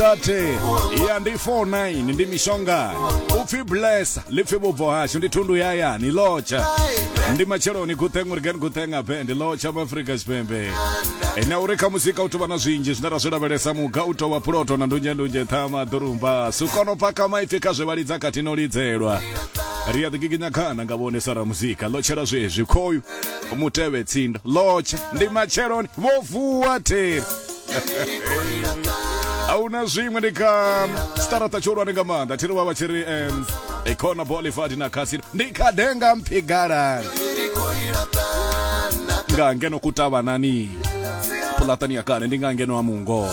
30 ya ndi 49 ndi mishonga upfi blessa lipfi vhubvo hashu ndi thundu ya yani lotsha ndi matsheloni gutheng uri gani gutheng ape ndi lotsha mu afrika tshipembe ene uri kha musika u tovha na zwinzhi zwine ra zwi lavhelesa muga u tovha puloto na ndunzhendunzhe ṱhama ḓurumba sukono paka maipfi kha zwe vha lidza khatino lidzelwa ri a ḓigiginya khana nga vhone sa ra muzika lotshela zwezwi khoyu mutevhe tsindo lotsha ndi matsheloni vho vuwa theri ahuna zwiṅwe ndi kha starata tshihulwane nga maanḓa thiri vha vha tshi ri um, econa bolivard na khasino ndi kha denga mphigalani nga ngeno kutavhanani pulatani ya kale ndi nga ngeno ha mungo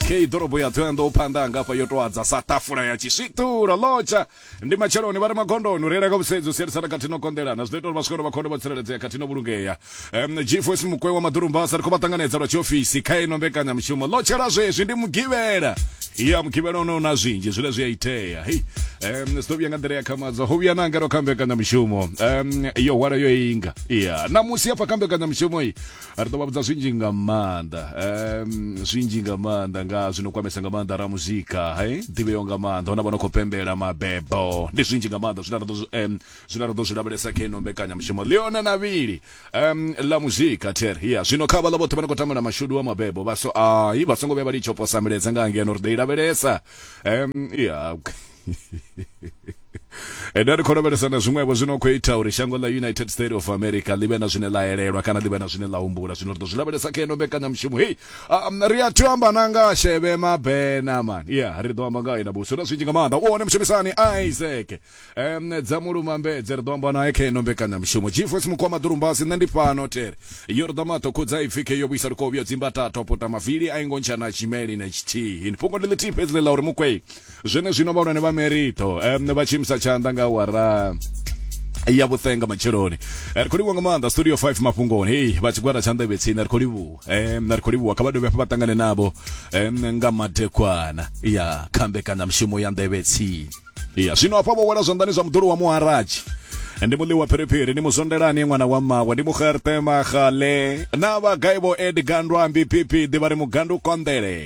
kei ḓorobo ya ṱhoyandou phanḓa hangafha yo tou adza sa tafula ya tshiswiṱula lotsha ndi matsheloni vha re magondoni u reila nga vhusedzi u sielisana khathihi no konḓelana zwi ḓo ita uri vhaswikolo vha khonde vho tsireledzea khathihi no vhulungea um, gfos mukwe wa maḓurumbasa ri khou vha ṱanganedza lwa tshiofisi kha ino mbekanyamushumo ḽo tshela zwezwi ndi mugivhela ya mugivhela ono na zwinzhi zwine zwi a itea hei um, zwi ḓo vhuya nga nḓila ya khamadzwa ho vhuya na ngeno kha mbekanyamushumo um, yo hwala yo inga ya ṋamusi hafha kha mbekanyamushumo i ri ḓo vha vhudza zwinzhi nga maanḓa um zwinzhi nga maanḓa nga zwino kwamesa nga maanḓa ra muzika he ḓivheyo nga maanḓa hona vha no khou pembela mabebo ndi zwinzhi nga maanḓa zwine ra ḓo um zwine ra ḓo zwi lavhelesa kha ino mbekanyamushumo leona na vhili um ḽa muzika ter ya zwino kha vhaḽa vhoṱhe vha no khou tambela mashudu wa mabebo vha so ai vha songo vhuya vha litsho posa miledza nga ngeno ri ḓo i lavhelesa um ya ndo ri khou lavhelesa na zwiṅwevho zwino khou ita uri shango ḽa united state of america ḽi vhe na zwine ḽa elelwa kana ḽi vhe na zwine ḽa humbula zwino ri ḓo zwi lavhelesa kha ino mbekanyamushumo hei um, ri a thi amba na nga sheve mabena man ya ri ḓo amba nga ina buso na zwinzhi nga maanḓa u hone mushumisani isaac um dza mulumambedze ri ḓo amba naye kha ino mbekanyamushumo gfos mukwama ḓurumbasi nṋe ndi fhano tere yo ri ḓa maṱo khudza ipfi khe yo vhuisa lukovhyo dzimba tato puta mavili a ingo ntshana tshimeli na tshithihi fhungo ndi ḽithihi fhedzi ḽe ḽa uri mukwei zwenezwino vhahulwane vha merito um, vha tshi imisa tshanḓa nga awara ya vhuṱenga matsheloni Eh, ri khou livhuwa nga maanḓa studio 5 mafhungoni hei vha tshigwada tsha nḓevhe tsini ri khou livhuwa em ri khou livhuwa kha vha dovhe hafha vha ṱangane navho em nga madekwana ya khambekanya mushumo ya nḓevhe tsini ya zwino hafha vho wela zwanḓani zwa muḓulu wa muharaji ndi muḽi wa phiriphiri ni muzondelani ṅwana wa mmawe ndi mugertema gale na vhagai vho edgandwa mbipipi ḓivha ri mugandu konḓele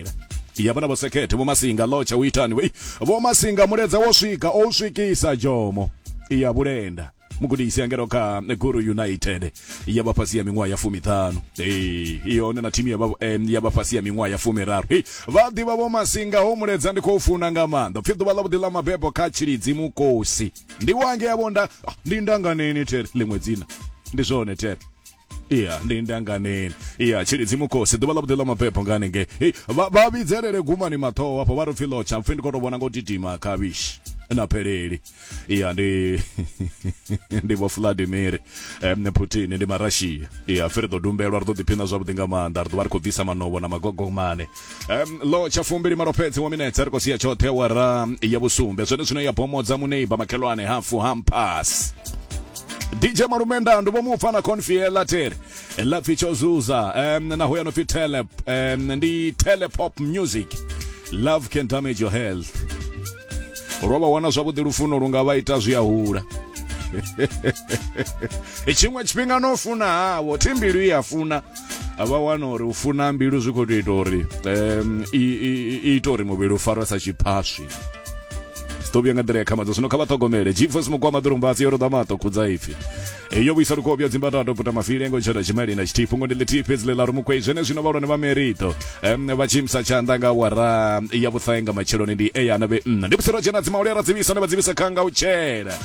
ya vhana vhosekhethe vhomasinga lotsha u itani wei vhomasinga muledza wo swika o u swikisa jomo ya vhulenda mugudisi angelo kha guru united ya vha fhasi ya miṅwaha ya fumiṱhanu ee i hone na thimu ya vha- em, ya vha fhasi ya miṅwaha ya fumiraru Hei, vha ḓivha vho masinga ho muledza ndi khou funa nga maanḓa pfhi ḓuvha ḽavhuḓi ḽa mabebo kha tshilidzi mukosi ndi wange yavho nda ah, ndi ndanganeni tere ḽiṅwe dzina ndi zwone tere iya ndi ndanganeni iya tshilidzi mukosi ḓuvha ḽa vhuḓi ḽa mabebo nga hanengei Hey, vha vha vhidzelele gumani maṱhoho hafho vha ri pfi lotsha mpfhi ndi khou tou vhona nga u titima khavhishi na pheleli iya ndi ndi vho vladimir um, putin ndi marashiya iya firi ḓo dumbelwa ri ḓo ḓiphina zwavhuḓi nga maanḓa ri ḓo vha ri khou bvisa manobo na magogomane Um, lo tsha fumbili malo fhedzi wa minetse ri khou sia tshoṱhe wara ya vhusumbe zwone zwino ya bomodza muneiba makhelwane hafu hampas dj malumenda ndo vho mupfa na confiela tere la pfi tsho zuza um, naho ya no pfi tele um, ndi telepop music love can damage your health ro vha wana zwavhuḓi lufuno lu nga vha ita zwi a hula tshiṅwe tshifhinga no funa havo thimbilu i a funa a vha wana uri u funa mbilu zwi khou tou ita uri um, i, i, i ita uri muvhili u farwa sa tshiphaswi ḓo vhuya nga nḓila ya khamadzo zwino kha vha ṱhogomele jifos mukwama ḓorombatsi yo roḓa maṱo khudza ipfi yo vhuisa lukobya dzimbatato puta mafile ngo tshona tshimali na tshithihi fhungo ndi ḽithihi fhedzi ḽe ḽa ri mukwei zwene zwino vhalwane vha merito vha tshimisa tshanḓa nga wara ya vhuṱhae nga matsheloni ndi eyana vhe nna ndi vhusiro dzhena dzimauli a ra dzivhisa ne vha dzivhisa kha nga u tshela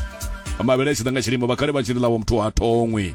mavhele a tshi ḓa nga tshilimo vhakhale vha tshi ḽi ḽawo muthu ha thongwi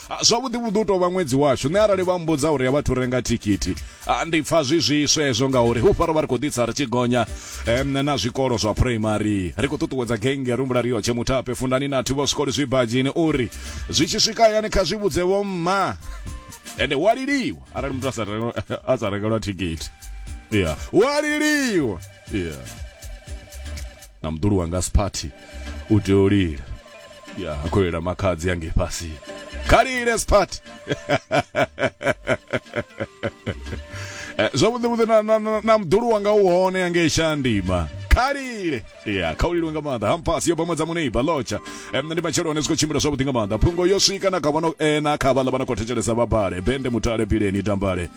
Ah, zwavhuḓi vhuḓi u tou vha ṅwedzi washu nṋe arali vha mbudza uri ya vhathu renga thikhithi ah, ndi pfa zwi zwiswa hezwo ngauri hu faro vha ri khou ḓitsa ri tshi gonya um na zwikolo zwa phuraimari ri khou ṱuṱuwedza genge rumbula riyotshe muthape fundani na thi vho zwikoli zwibadzhini uri zwi tshi swika hayani kha zwi vhudze vho mma ende wa liliwa arali muthu a sa rengelwa thikhithi ya wa liliwa yeah. na mdulu wanga siphathi u tea u lila ya a khou lilela makhadzi ange fhasi kha lile siphathi Eh, zwavhuḓi vhuḓi na- na- na- na mdulu wanga u hone yange shandima khalile ya kha u lilwe nga maanḓa hampasi yo bamedza muneiba lotsha Eh, nṋe ndi matshelo hone zwi khou tshimbila zwavhuḓi nga maanḓa phungo yo swika na kha vhano eh, na kha vhaḽa vha no khou thetshelesa vhabale bende mutale bileni tambale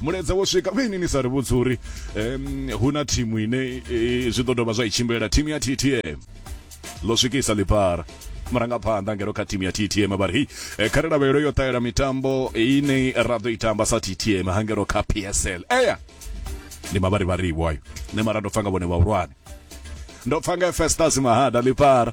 mulaedza wo swika vhe ini ni sa ri vhudzi uri um, hu na thimu ine e, zwi ḓo dovha zwa i tshimbilela thimu ya ttm ḽo swikisa ḽipara murangaphanḓa ngero kha thimu ya ttm vha ri hei eh, kha ri lavhelelo yo ṱahela mitambo ine ra ḓo i tamba sa ttm ha ngero kha psl eya ndi mavharivhariwo ayo nṋe mara ndo pfa nga vhone vhahulwane ndo pfa nga festas mahada ḽipara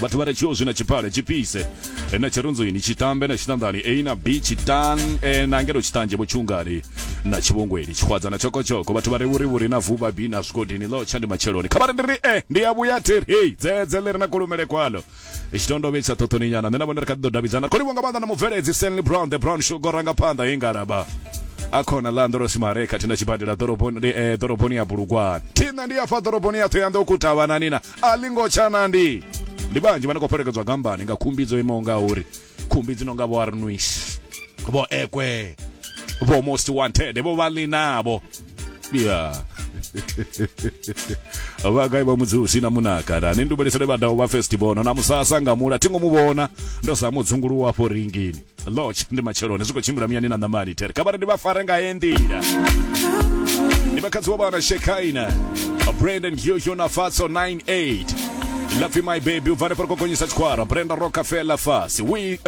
vhathu vha re tshiozwi na tshipale tshipise eh, na tshirunzwini tshitambe na tshiṱanḓani a na b tshitan eh, na ngelo tshiṱanzhe vho tshungani na tshivhongweni tshihwadza na tshokotshoko vhathu vha re vhurivhuri na vuba b na zwigodini ḽo tsha ndi matsheloni kha vha ri ndi ri e ndi ya vhuya theri hei dzedze ḽi re na kulumele kwalo tshitondovhe tsha ṱhoṱhoni nyana nṋe na vhone ri kha ḓi ḓo davhidzana ri khou livho nga maanḓa na mubveledzi stanley brown the brown sugar ranga phanḓa he ngalaba akhona ḽa ndorosi mare khathihi na tshibadela ḓoroboni eh, ḓoroboni ya bulugwane thina ndi ya fa ḓoroboni ya thoyandou kutavhanani na a ḽi ngo tsha na ndi ndi vhanzhi vha no khou fhelekedzwa gambani nga khumbi dzo imaho nga uri khumbi dzi no nga vho arnuis vho ekwe vho most wanted vho vha ḽi navho ya vhagai vha mudzusi na munaka na ni ndubelesele vhadaho vha festival na musasa nga mula thingo mu vhona ndo sa mudzunguluwa afho ringini Lodge ndi matsheloni zwi khou tshimbila muyani na ṋamani there kha vhari ndi vha fare nga ye nḓila ndi makhadzi wa vhana shekaina brandon hyohyo na fatso 98 lapfi my baby ubva hanefha ri khou gonyisa tshikwara brenda rockefeller fasi we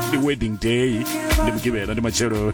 ndi wedding day ndi mugivhela ndi matsheloni